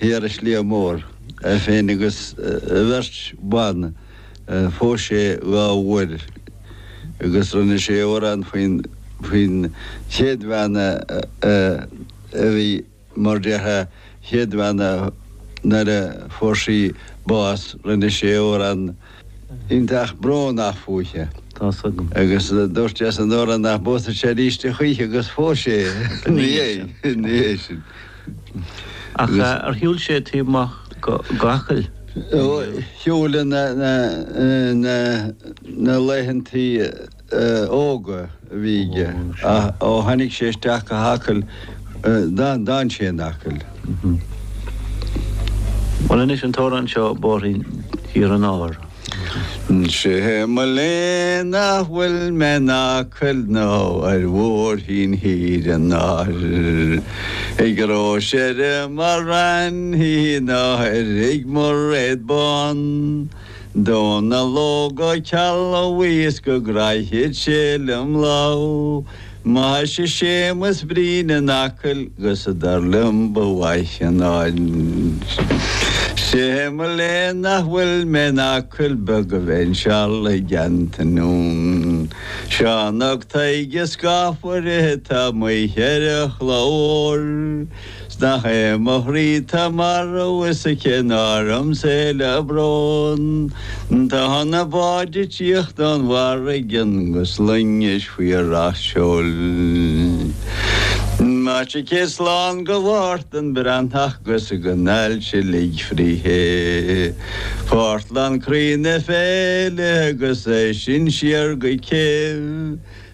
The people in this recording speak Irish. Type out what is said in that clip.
thiar i Sliabh Mór, é féin agus a bheirt bhan. Phós sé dhá uair agus rinne sé amhrán faoin faoin chéad bhean a bhí mar de a chéad bhean nuair a fuair sí bás. Rinne sé amhrán. iontach brónach fúithi. Tá's agam. Agus dúirt sé san amhrán nach bpósfadh sé aríst a choíche agus phós sé ina dhiaidh sin. Ach ar shiúil sé taobh amuigh de Acaill? Ó, shiúil ina laethanta. óga a bhí aige ach ó tháinig sé isteach go hAcaill d'fhan sé in Acaill. Bhuel anois an t-amhrán seo, Bóithrín Thír an Áir. Sé mo léan nach bhfuil mé in Acaill ná ar bhóithrín Thír an Áir, Ag Róis ar an Mhala Raithní ná i dtigh Mhairéad Bhán, Dónall Óg Ó Ceallaigh bhíos go gcraithfeadh sé liom lámh maise Séamus Brín in Acaill gus dar liom ba mhaith an áit Sé mo léan nach bhfuil mé in Acaill Beag go mbeinn seal i dteannta Seán 'ac Taidhg an scafaire tá m'oíche ar a chlár. 'S nach é mo chroí 'tá marbh is a chinn orm 's é le brón, Tá na báid ag tíocht ón bhfarraige an 'gus loingis faoi racht seoil. Maise céad slán do Mháirtín Breathnach 'gus go n-ailse lig fríthi, Pártlán croí na féile 'gus as sin siar go Keel.